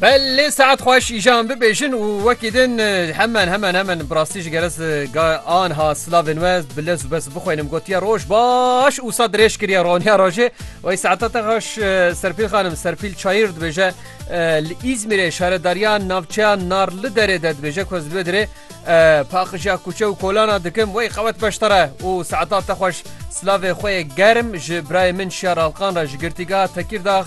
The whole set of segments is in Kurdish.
Belê saet xweş îjan bibêjin û wekî din hemen hemen hemen birastî ji geres anha silavên we bile zu bes bixwênim gotiye roj baş û sa dirêj kiriye roniya rojê wey saeta te xweş serpîl xanim serpîl çayir dibêje li îzmîrê şaredariya navçeya narli derê de dibêje ku ez li wê dirê paxijiya kûçe û kolana dikim wey xewet beştere û saeta te xweş silavê xwe germ ji birayê min şiyar alqan re ji girtîga tekîrdax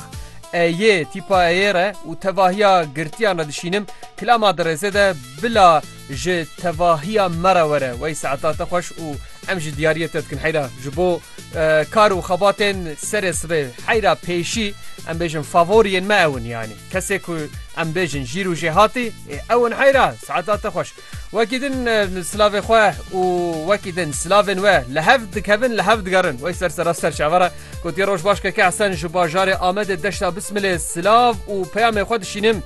E yê tîpa e yê re û tevahiya girtiyan re dişînim, kilama di rêzê de bila ji tevahiya me re were. Wey saeta te xweş û em ji diyariyê te dikin heyra. Ji bo kar û xebatên serê sibê heyra pêşî em bêjin favoriyên me ew in yanî. Kesê ku em bêjin jîr û jêhatî ê ew in heyra. Saeta te xweş. Wekî din silavê xwe û wekî din silavên we li hev dikevin li hev digerin wey ser sera ser çavara gotiye roj baş keke Hesen ji bajarê Amedê deşta bismilê silav û peyamê xwe dişînim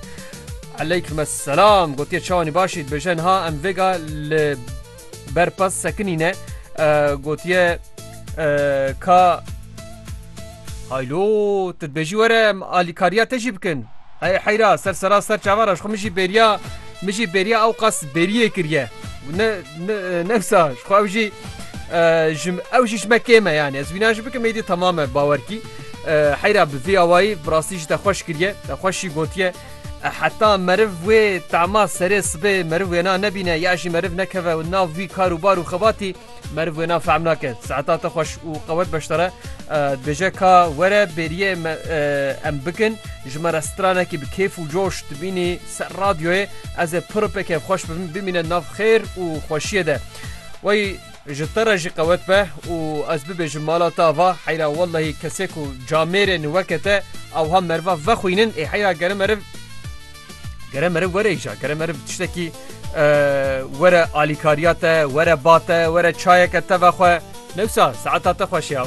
Eleyküm es selam gotiye çawanî başî dibêje niha em vêga li berpas sekinîne gotiye ka Haylo, tu dibêjî were em alîkariya te jî bikin. Hey heyra, ser sera ser çavara ji xwe min jî bêriya min jî bêriya ewqas bêriyê kiriye. Ne ne wisa ji xwe ew jî ji ew jî ji me kêm e yanî ez wîna jî bikim êdî temam e bawer kî. Heyra bi vê awayî bi rastî jî te xweş kiriye, te xweş jî gotiye. Heta meriv wê tema serê sibê meriv wêna nebîne ya jî meriv nekeve nav wî kar û bar û xebatî. Meriv wêna fehm nake saeta te xweş û qewet beşdare dibêje ka were bêriyê me em bikin ji me re stranekî bi kêf û coş dibînî ser radyoyê ez ê pir pê kêf xweş bibim bimîne nav xêr û xweşiyê de wey ji te re jî qewet be û ez bibêjim mala te ava heyra wellehî kesê ku camêrên weke te ewha meriva vexwînin ê heyra gere meriv Gere meriv were îja, gere meriv tiştekî were alîkariya te, were ba te, were çayeke te vexwe. Newsa saeta te xweş ya.